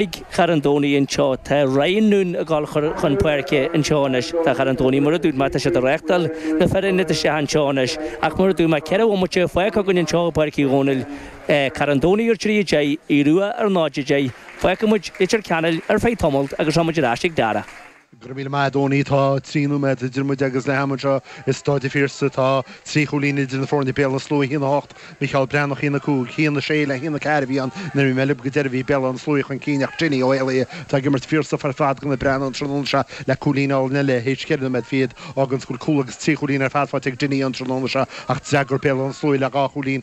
Ag Carn Domhnaigh anseo. Tá Ryan Noone ag dul chun páirce anseo anois. Tá Carn Domhnaigh, mar a dúirt mé, tá siad ag reáchtáil na fir ionaid isteach anseo anois, ach mar a dúirt mé, ceithre bhomaite fágtha againn anseo i bPáirc Uí Dhónaill. Carn Domhnaigh a trí, a deich, Aodh Rua a náid, a deich. Fágfaimid Leitir Ceanainn ar feadh tamalt agus rachaimid ar ais chuig Darragh. Go raibh míle maith, a Dhónaill. Tá trí nóiméad idir muid agus leath ama anseo i Stáid an Phiarsaigh. Tá trí chúilín idir na foirne, Béal Átha na Sluaighe 1 8, Micheál Breathnach 1 5, 1 6 le 1 4 a bhí ann. Nuair a bhí mé lib go deireadh bhí Béal Átha na Sluaighe chun cinn ach Dinny Ó hÉalaí atá ag imirt fíor-stuif ar fad do na Breathnaigh an tráthnóna seo le cúilín álainn eile théis cheithre nóiméad fichead. Fágann sin go bhfuil cúl agus trí chúilín ar fad faighte ag Dinny an tráthnóna seo ach d'fhreagair Béal Átha na Sluaighe le dhá chúilín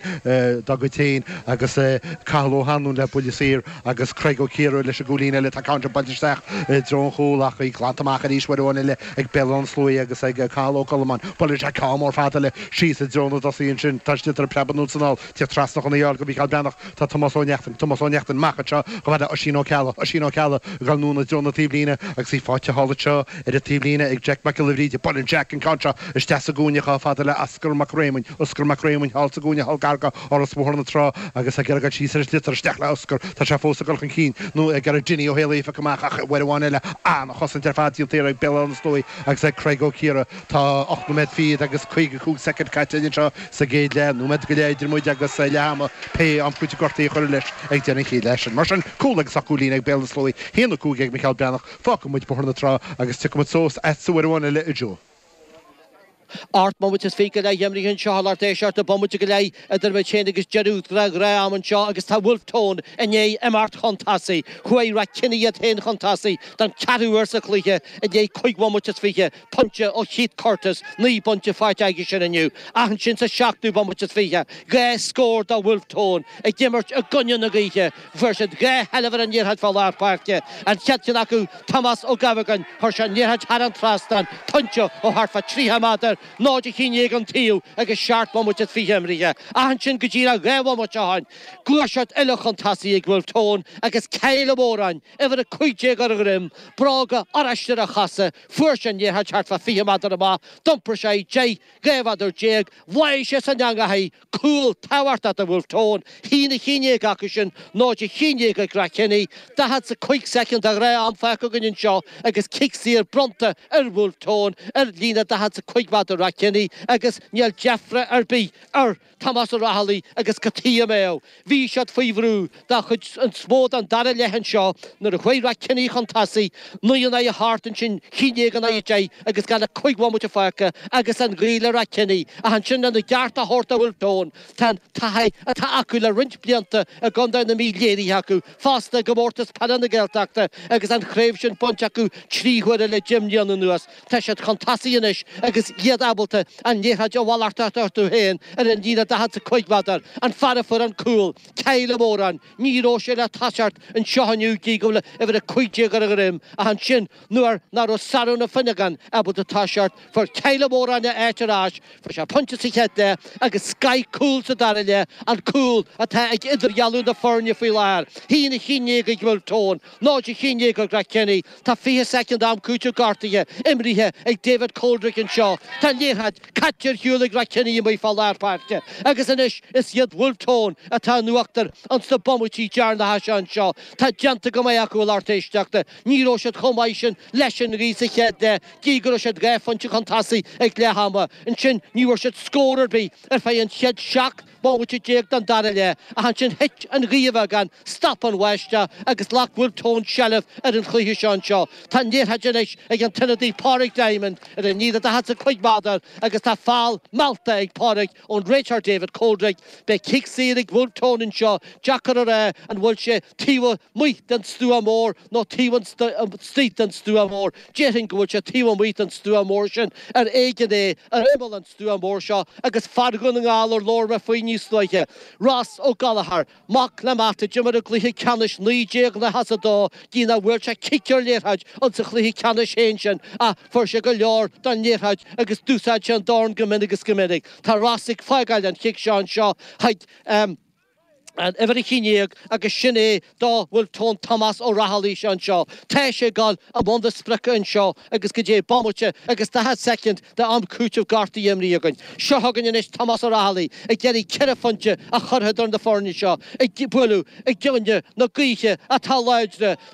dá gcuid féin agus Cathal Ó hAnluain le buille saor agus Craig Ó Ciardha leis an gcúilín eile, tá an ceann seo buailte isteach i dtreo an chúil ach í glanta amach arís, uair amháin eile ag Béal Átha na Sluaighe agus ag Cathal Ó Colmáin, buaileann sé ceann mór fada eile síos i dtreo na dtosaí, ansin tá an sliotar ag preabadh anonn is anall, tíocht trasna chun í a fháil do Mhícheál Breathnach, tá Tomás Ó Neachtain, Tomás Ó Neachtain amach anseo chomh fada le Oisín Ó Ceallaigh, Oisín Ó Ceallaigh ag dul anonn i dtreo na taobhlíne agus í faighte thall anseo ar an taobhlíne ag Jack Mac Giolla Bhríde, buaileann Jack an ceann seo isteach sa gcúinne chomh fada le Oscar Mac Réamoinn, Oscar Mac Réamoinn thall sa gcúinne thall gar do. Áras Bhóthar na Trá agus ag iarraidh dul síos ar an sliotar isteach le Oscar, tá sé fós ag dul chun cinn, nó ag iarraidh Dinny Ó hÉalaí a phiocadh amach ach uair amháin eile, an-chosaint ar fad déanta thiar ag Béal Átha na Sluaí agus ag Craig Ó Ciardha. Tá ocht nóiméad fichead agus caoga cúig soicind caite againn anseo sa gcéad leath, nóiméad go leith idir muid agus leath ama, pé am cúitimh gortaithe a chuireadh leis ag deireadh an chéad leath sin. Mar sin, cúl agus ocht gcúilín ag Béal Átha na Sluaí, a haon a cúig ag Micheál Breathnach. Fágfaidh muid Bóthar na Trá agus tiocfaidh muid suas agatsa uair amháin eile, a Joe. Ocht mbomaite is fiche go leith imrithe anseo thall tar éis ocht a' bomaite go leith idir muid féin agus deireadh ghnáth-am anseo agus tá Wolfe Tone i ndiaidh imeacht chun tosaigh. Chuaigh Rathkenny iad féin chun tosaigh don cheathrú uair sa chluiche i ndiaidh cúig bhomaite is fiche, pointe ó Keith Curtis, naoi bpointe faighte aige sin inniu, ach ansin sa seachtú bomaite is fiche, dhá scór do Wolfe Tone ag imirt i gcoinne na gaoithe. Fuair siad dhá sheilbh ar an liathróid fá lár páirce. An chéad cheann acu, Tomás Ó Gabhagáin, chuir sé an liathróid thar an trasnán, pointe ó thart fá 30 méadar, 0 11 an taobh agus seacht bhomaite is fiche imrithe. Ach ansin go díreach dhá bhomaite ó shin, gluaiseacht eile chun tosaigh ag Wolfe Tone agus Kyle Ó Móráin, uimhir 15, ar a dhroim, bróga oráiste ar a chosa, fuair sé an liathróid thart fá 20 méadar amach, d'iompair sé í 10, dhá mhéadar déag, bháigh sé san eangaigh, cúl tabhartha do bhfuil tón Shí na Chinnéige acu sin nó de Chinnéige ag Rath Kenny, 45 soicind a dhá am faic againn anseo agus cic saor bronnta ar bhfuil tón ar líne 45 mhaith do Rath Kenny agus níl deifre ar bith ar Tomás Ó Raghallaigh agus Cotí Ó Méadhbh. Bhí siad faoi bhrú don chuid is mó don dara leath anseo nuair a chuaigh Ráth Ceannaigh chun tosaigh, naoi in aghaidh a hocht ansin, cionn déag in aghaidh a deich agus gan ach cúig bhomaite fágtha agus an ghaoth le Ráth Ceannaigh ach ansin lena gceart a thabhairt do Bhulf Tón, tá an taithí atá acu le roinnt blianta i gContae na Mí léirithe acu fosta i gComórtas Peile na Gaeltachta agus an chraobh sin bainte acu trí huaire le deich mbliana anuas. Tá siad chun tosaigh anois agus iad ábalta an liathróid a mhalartú orthu féin ar an líne 45 méadar, an fear a fuair an cúl, Kyle Ó Móráin, ní raibh sé le toiseacht anseo inniu i ndiaidh go bhfuil uimhir 15 ar a dhroim ach ansin nuair ná raibh Sárán Ó Fionnagáin ábalta toiseacht fuair Kyle Ó Móráin a áit ar ais, fuair sé pointe sa chéad leath agus scoth cúl sa dara leath, an cúl atá ag idirdhealú na foirne faoi láthair, a haon a cionn déag ag Bhulf Tón. Náid a cionn déag ag Ráth Ceannaigh. Tá 20 soicind am cúitimh gortaithe imrithe ag David Coldrick anseo. Tá an liathróid caite ar shiúl ag Ráth Ceannaigh amuigh fá lár páirce agus anois is iad Bhulf Tón atá in uachtar ins na bomaití deireanacha seo anseo. Tá déanta go maith acu a lucht éisteachta. Ní raibh siad chomh maith sin leis an ghaoith sa chéad leath gidh go raibh siad dhá phointe chun tosaigh ag leath ama. Ansin ní bhfuair siad scór ar bith ar feadh an chéad seacht bomaite déag den dara leath, ach ansin thit an ghaoth a bheagán, stop an bháisteach agus ghlac Bhulf Tón seilbh ar an chluiche seo anseo. Tá an liathróid anois ag an t-ionadaí Pauric Diamond ar an líne daichead is a cúig méadar agus tá feall meallta ag Pauric ón réiteoir David Coldrick. Beidh cic saor ag Bhulf Tón anseo, deacair a rá an bhfuil sé taobh amuigh den stua mór nó taobh istigh den stua mór. Déarfainn go bhfuil sé taobh amuigh den stua mór sin, ar éigean é ar imeall an stua mór seo, agus fear Dhún na nGall ar labhair mé faoi níos luaithe, Ross Ó Gallchóir, mac le Matt a d'imir i gcluiche ceannais 1992, gidh nach bhfuair sé cic ar liathróid ins an chluiche ceannais féin sin, ach fuair sé go leor don liathróid agus d'úsáid sé an dorn go minic is go minic. Tá Ross ag fágáil an chic seo anseo chuig. an uimhir a cionn déag agus sin é do Bhulf Tón Tomás Ó Raghallaigh seo anseo. Tá sé ag gabháil i mbun na sprice anseo agus go dtí bomaite agus daichead soicind de am cúitimh gortaithe imrithe againn. Seo chugainn anois Tomás Ó Raghallaigh ag iarraidh ceithre phointe a chur eadar na foirne seo ag bualadh i gcoinne na gaoithe atá láidir